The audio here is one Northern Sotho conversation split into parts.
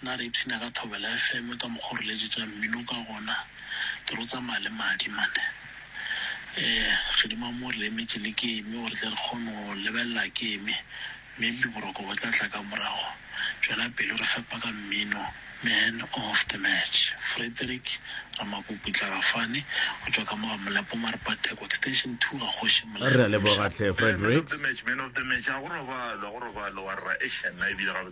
Na re ipshina ka thobela FM ka mokgwa o re letšetša mmino ka gona? Ke re o tsamaya le madi mane. Ee, Kgidima mo re emetše le game gore tle re kgone go lebelela game, maybe boroko bo tla tla ka morago. Tšwela pele o re fepa ka mmino. Man of the match, Frederick Ramakuku Tlagafane go tšwa ka mo ga Molepo Marepa Theko Extension two ga Kgoši Molekge Re a leboga hle Frederick. Man of the match, man of the match, a go robalwe, a go robalwe, wa rra, eish, nna ebile ga.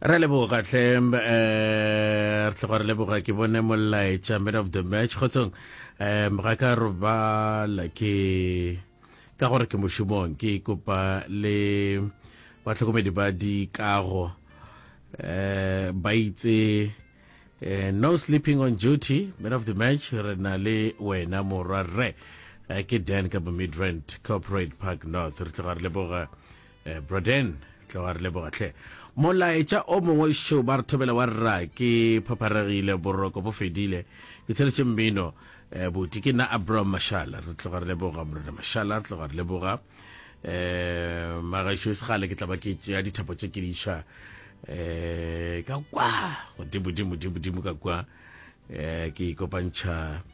Re leboga hle eh re tloga re leboga ke bone molaetša man of the match kgotsong um ga ka robala ke ka gore ke mošomong ke kopa le batlhokomedi ba dikago um ba itse eh, no sleeping on duty man of the match re na le wena morwa rre Eh, ke dan ka bo midrand corporate park north re tloga re leboga Bro Dan, tle wa re leboga hle. Molaetša o mongwe šo ba re thobela wa rra ke phapharegile boroko bo fedile ke tsheletše mmino eh, buti ke nna Abram Mashala re tloga re leboga morena Mashala re tloga re leboga eh magašo e segale ke tla ba ke tšea dithapo tše ke diša eh ka kwa godimo dimo dimo dimo ka kwa eh ke ikopantšha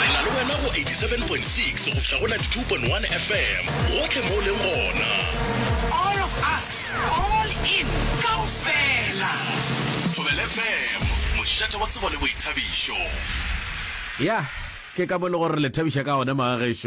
re na le wena go 87.6 go fihla go 92.1 fm gotlhe mo o leng gona all of us all in kaofela thobel fm mošate wa tsebo le boithabišo ya ke ka mo le gore le thabiša ka one magagešo